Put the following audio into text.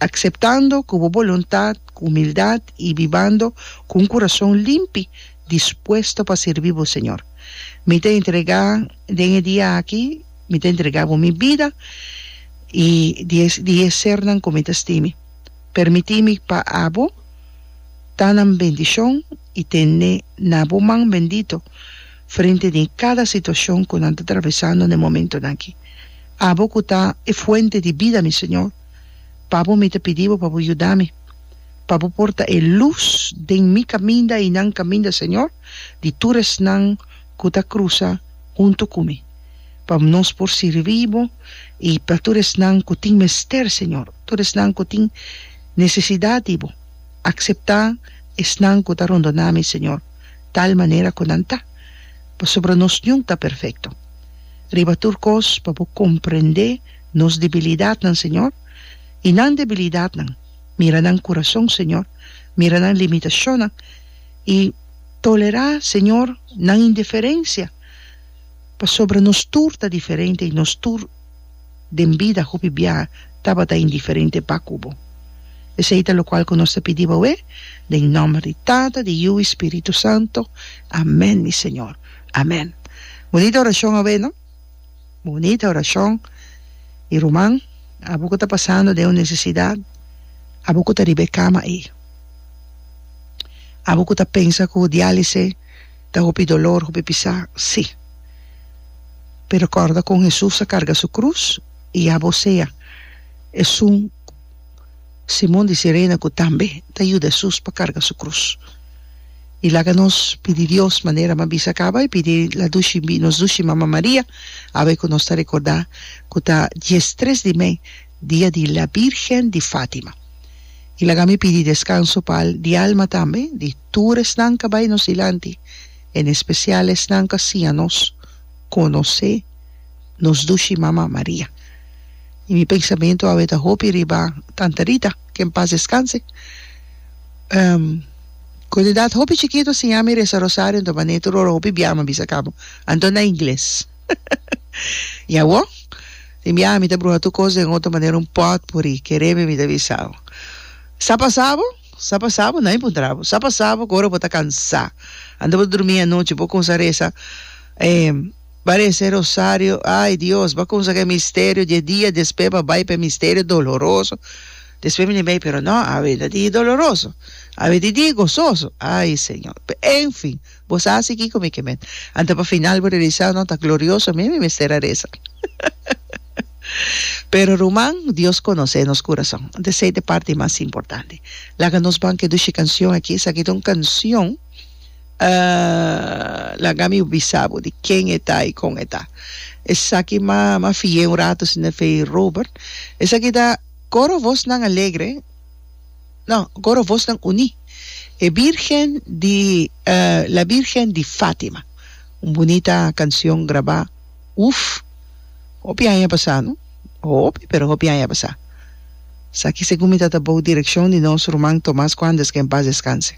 Akseptando ku bo boluntat ku humildad i bibando ku un kurason limpi, dispuesto pa sirbi bo Señor. Mi ta entregá den e dia aki, mi ta entregá bo mi bida i di e di e sernan ku mi ta stimi. Permití mi pa abo ta nan bendishon i tene na bo man bendito frente di kada situashon ku nan ta travesando na e momentonan aki. Abo ku ta e fuente di bida mi Señor. Papo, mi ta pidi bo pa bo yuda mi, pa bo por ta e lus den mi kaminda i nan kaminda, Señor, di tur esnan ku ta krusa huntu ku mi, pa nos por sirbi bo i pa tur esnan ku tin mester, Señor, tur esnan ku tin nesesidat di bo. Akseptá esnan ku ta rondoná mi, Señor, tal manera ku nan ta, pasobra nos niun ta perfekto. Riba tur kos, pa bo komprendé. nos debilidadnan, Señor, i nan debilidadnan. Mira nan kurason, Señor, mira nan limitashonnan, i tolerá, Señor, nan indiferensia, pasobra nos tur ta diferente i nos tur den bida hopi biaha tabata indiferente pa ku bo. Esei ta lokual ku nos ta pidi bo awé, den nòmber di Tata, di Yu i Spiritu Santu. Amèn, mi Señor. Amèn. Bunita orashon awé, no? Bonita oracion y ruman abo cu ta pasando den un necesidad abo cu ta riba e cama ey abo cu ta pensa cu dialise ta hopi dolor hopi pisa si pero corda con Hesus a carga su cruz y abo sea esun Simon di Sirene ku tambe ta yuda Hesus pa karga su krus. I laga nos pidi Dios manera m'a bisa kaba, i pidi la dushi bi nos dushi Mama Maria, awe ku nos ta rekordá ku ta diestres di mei, dia di La Bírgen di Fátima. I laga mi pidi deskanso pa di alma tambe di tur esnan k'a bai nos dilanti, en espesial esnan k'asiña nos konosé. nos dushi Mama Maria. I mi pensamentu awe ta hopi riba Tanta Rita, ke en pas deskanse. Um, ku e edat hopi chikitu a siña mi resa rosario, anto manera tur ora hopi biaha mi a bisa kaba, anto na ingles. I awo, tin biaha mi ta bruha tur kos den oto manera, un pòtpuri, ke rebe mi ta bisa bo, Sa pasa bo? Sa pasa bo? Nan mi puntra bo, Sa pasa bo ku ora bo ta kansá, anto bo ta drumí anochi, bo kumsa resa, eh. Barece rosario, ay Dios, ba cumsa c'e misterio dje dia, despe ba bay p'e misterio doloroso, despe mi bay pero no, awe ta di doloroso, awe di di gozoso, ay Señor, pe enfin, bo sa si kico mi ke mester, ante pa final bo realisa no ta glorioso mi mi mester a reza, pero ruman Dios conoce nos curason, ante esey ta e parti mas importante, laga nos ban ke dushi cancion aki, esaki ta un cancion. Ah, laga mi bisa bo di ken e ta i kon e ta. Esaki m'a m'a fié un rato si n'e fe Robert. Esaki ta Coro Vosnan Alegre, no, Coro Vosnan Uní, e Bírgen di, ah, La Bírgen di Fátima. Un bunita kansion grabá, uf, hopi aña a pasá, no? Hopi, pero hopi aña a pasá. Esaki segun mi ta ta bou direkshon di nos ruman Tomás Kuanders, ke en pas deskanse.